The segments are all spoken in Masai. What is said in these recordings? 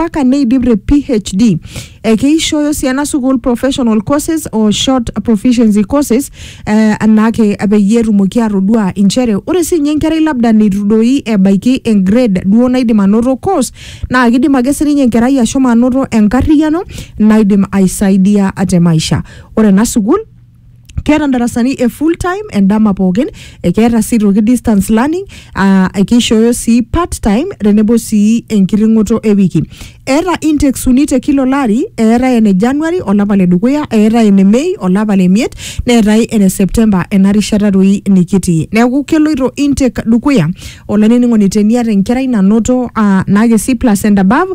mpaka neidip te PhD. Eh, keishooyo sii ena sukuul professional courses o short proficiency courses eh, anaake peyie etumoki atodua inchere ore sii ninye enkerai labda neitu doi ebaiki engrade duo naidim anoto course naa kidim ake sininye enkerai ashomo anoto enkarriyiano naidim aisaidia te maisha. Ore ena sukuul keeta ndarasani e full time endama pookin ekeeta sii toki distance learning aa ekishooyo sii part time tenebo sii enkiting'oto e wiki eeta intakes uni te kila olari eetae ene january olapa le dukuya eetae ene mei olapa le miet neetae ene september ena rishata doi nikitii neeku keloito intake dukuya olainining'oni teniata enkerai nanoto aa naa kesi plus and above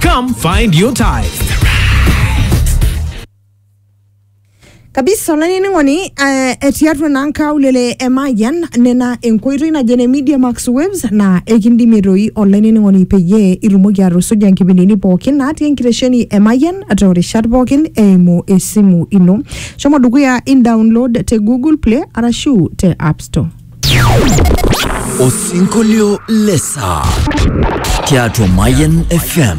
Come find your type. kabisa olainining'oni eh, etii atua naa nkaulele e Mayian nena enkoitoi naje ne Media Max Waves naa ekindimie toi olainining'oni peyie itumoki atusuja nkipindini pookin natii enkitesheni e Mayian toorishat pookin eimu esimu ino. Shomo dukuya in download te Google Play arashu te App Store. Osinkolio le saa tiatua Mayian FM.